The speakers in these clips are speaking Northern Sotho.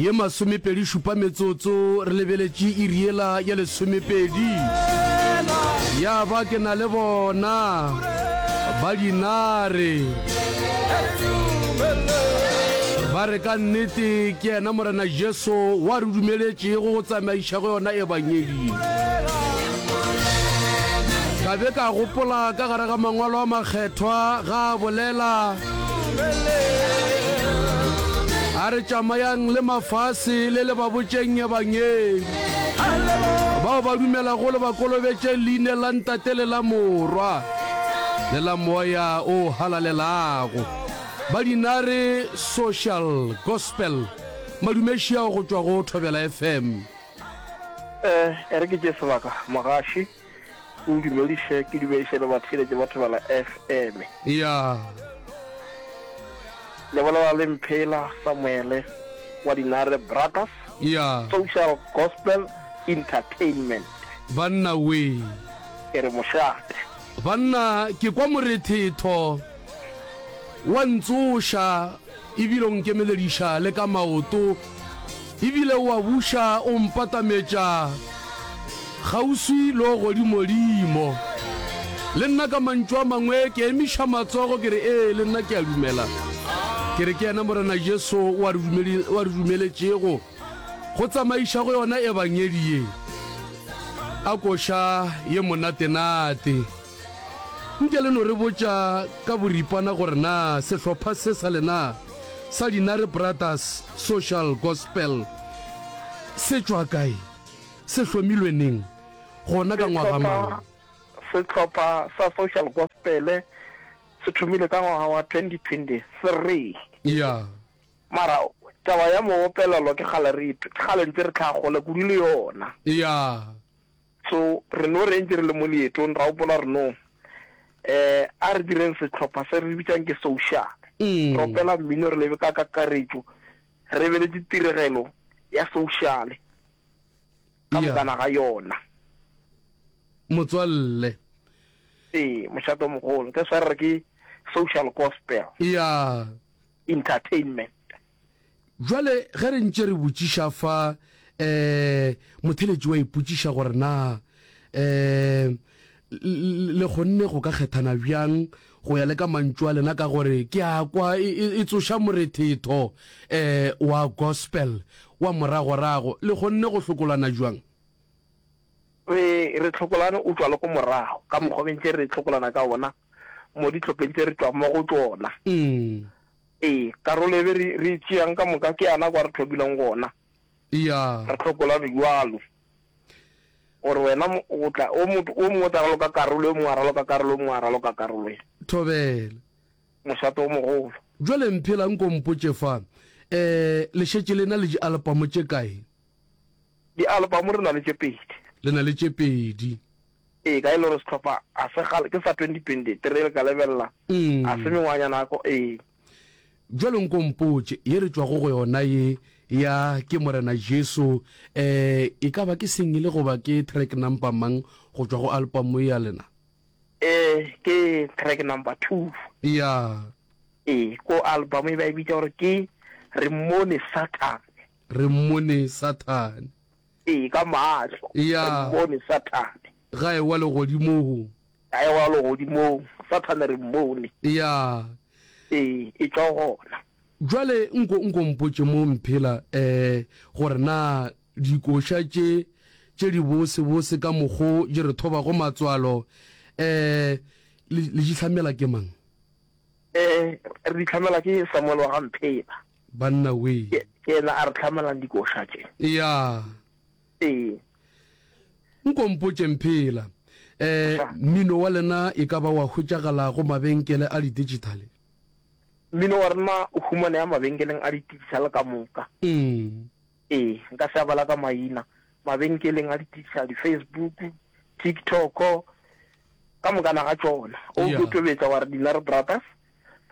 ye masomepedi šupa metsotso re lebeletše iriela ya lesomepedi ya ba ke na le bona ba dinare ba re ka nnete ke yena morena jesu wa re dumeletšego go tsamaiša go yona e bangedi Ka be ka gopola ka gare ga Mangwalo a Makgethwa, ga a bolela, a re, Tšamayang le mafase le le ba botšeng Ebangedi. Bao ba dumelago le ba kolobetše Leine la Ntate le la Morwa le la Moya o Halalelago. Ba Dinare Social Gospel, Madumešiao go tšwa go Thobela FM. Eh, e re ke tšee sebaka, mogaši. O ndumediše ke dumediše le batheeletši ba Thobela FM. Eya. Le bolela le Mphela Samuele wa Dinare Brothers Eya. Social Gospel Entertainment. Banna wee. Ke re mošate. Banna, ke kwa morethetho wa ntsoša. E bile o nkemelediša le ka maoto, e bile o a buša o mpatametša kgauswi le go godimodimo. Le nna ka mantšu a mangwe ke emiša matsogo ke re, Ee, le nna ke a dumela. Ke re, Ke yena Morena Jesu o a re dumele, o a re dumeletšego go tsamaiša go yona Ebangedi ye a koša ye monatenate. Nke le no re botša ka boripana gore na sehlopha se sa lena sa Dinare Brothers Social Gospel se tšwa kae, se hlomilwe neng, gona ka ngwaga mang? Sehlopha sa Social Gospel se thomile ka ngwaga wa 2023. Ya. Mara taba ya moopelelo ke kgale re, ke kgale ntse re tlhaga kgole kudu le yona. Ya. So re no re ntše re le mo leetong ra gopola re no eh a re direng sehlopha se re bitšang ke social. Re opela mmino re lebe ka kakaretšo re lebeletše tiregelo ya social ka bokana ga yona. Motswalle. Ee, mošate o mogolo. That's why re re ke social gospel. Yeah. Entertainment. Bjale ge re ntše re botšiša fa, um, motheletši wa ipotšiša gore na, um, le, le kgonne go ka kgethana bjang go ya le ka mantšu a lena, ka gore ke a kwa e, e, e tsoša morethetho, um, wa Gospel wa moragorago. Le kgonne go hlokolana bjang? Re, re hlokolane o tšwa le go morago, ka mokgwa be ntše re hlokolana ka wona mo dihlopheng tše re tšwago mo go tšona. Um. Ee, karolo e be re, re e tšeang ka moka ke yana kwa re tlhokileng gona. Eya. Re hlokola bjalo gore wena o tla, o motho o mongwe o tla raloka karolo, yo mongwe a raloka karolo, yo mongwe a raloka karolo ya. Thobela. Mošate o mogolo. Jwale mphela nko mpotše fa, eh, le šetše le na le dialpamo tše kae? Dialpamo re na le tše pedi. Le na le tše pedi. Ee, ka e le gore sehlopha ga se kgale, ke sa 2023 le ka lebelela, ga se mengwaga ya nako. Ee. Bjalo nko mpotše, ye re tšwago go yona ye ya Ke Morena Jesu, eh, e ka ba ke singele goba ke track number mang go tšwa go alpamo ya lena? Eh, ke track number two. Ya. Ee, ko alpamo e ba e bitša gore ke Re Mmone Sathane. Re Mmone Sathane. Ee, ka mahlo. Ya. Re mmone Sathane. Ga ewa legodimong. Ga ewa legodimong. Sathane re mmone. Ya. Ee, e tšwa gona. Jwale nko nko mpotše mo mphela eh gore na dikoša tše tše di bose bose ka mokgo di re thobago matswalo eh le di hlamela ke mang? E, re di hlamelwa ke Samuel wa ga Mpheba. Banna wee. Ke, ke ena a re hlamelang dikoša tše. Ya. Ee. Nko mpotše Mphela, e, mmino wa lena e ka ba wa hwetšagala go mabenkele a didigitale? Mmino wa rena o humanea mabenkeleng a didigitale ka moka. Mm. Ee, nka se a bala ka maina. Mabenkeleng a ditiša, di-Facebook, TikTok, ka mokana ga tšona. O Yeah. tlo tobetsa wa re Dinare Brothers,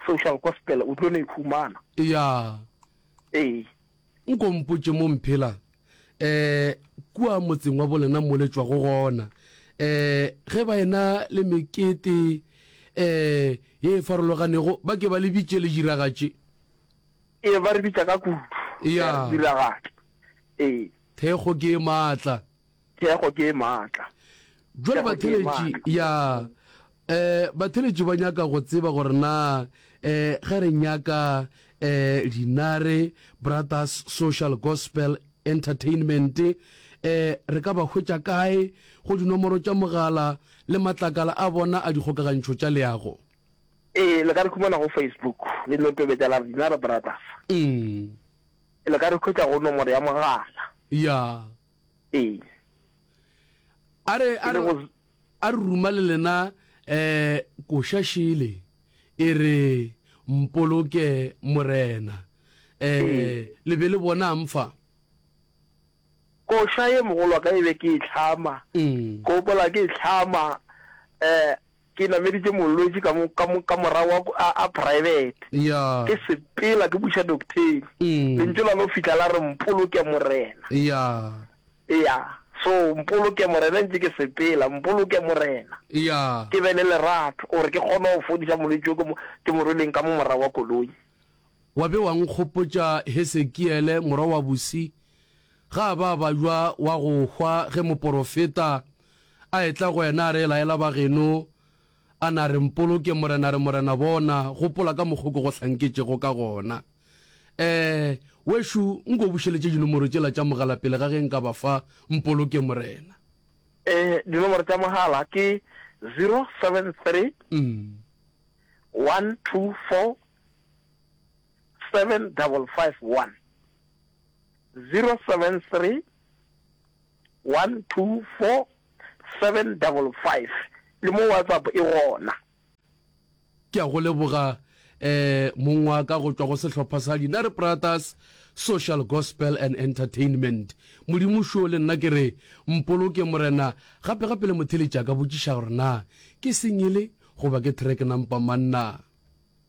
Social Gospel, o tlo no e humana. ya Ee. nko mpotše mo mphela um kua motseng wa bolena mo le tšwago gona um ge ba ena le mekete um ye e farologanego ba ke ba le bitše le diragatše Ee, ba re bitša ka kudu. Ea. Ea diragatša. Ee. Thekgo ke e matla. Thekgo ke e matla. Jwale Thekgo ke e batheletši matla. ya eh batheletši ba nyaka go tseba gore na eh ge re nyaka eh Dinare Brothers Social Gospel Entertainment eh re ka ba hwetša kae go dinomoro tša mogala le matlakala a bona a dikgokagantšho tša leago. Ee, le ka re humana go Facebook, le no tobetša la re Dinare Brothers. Umm. Le ka re hwetša go nomoro ya mogala. Ya. Ee. A re, a re, a re ruma le lena eh koša šele e re mpoloke morena eh le be le bonang fa. Koša ye mogolwa ka e be ke e tlhama, ke gopola ke e tlhama eh Ke nameditše molwetši ka mo, ka mo, ka morago wa ku, a, a private. Yeah. Ke sepela ke buša doktheng. Mm. Lentšu la no fihla la re, Mpoloke Morena. Yeah. Yeah. So, Mpoloke Morena ntše ke sepela, Mpoloke Morena. Yeah. Ke be le lerato, gore ke kgone go fodiša molwetši o ke mo, ke mo rweleng ka mo morago wa koloi. Wa be wa nkgopotša Hesekiele, morwa wa Busi. Ga ba ba ywa wa go hwa ge moporofeta a etla go yena a re, Laela bageno, a na re mpoloke, Morena re, Morena, bona, gopola ka mokgo ke go hlanketšego ka gona. Ee, wešu, nko bušeletše dinomoro tšela tša mogala pele ga ge nka ba fa, mpoloke, Morena. Ee, dinomoro tša mogala ke zero seven three, one two four, seven double five one. 0731247555 le mo WhatsApp e gona. Ke a go leboga mong wa ka go tšwa go sehlopha sa Dinare Pratas Social Gospel and Entertainment. Modimo šo le nna ke re mpoloke Morena gape gape le motheletša ka botšiša gore na ke singele goba ke track na mpa manna.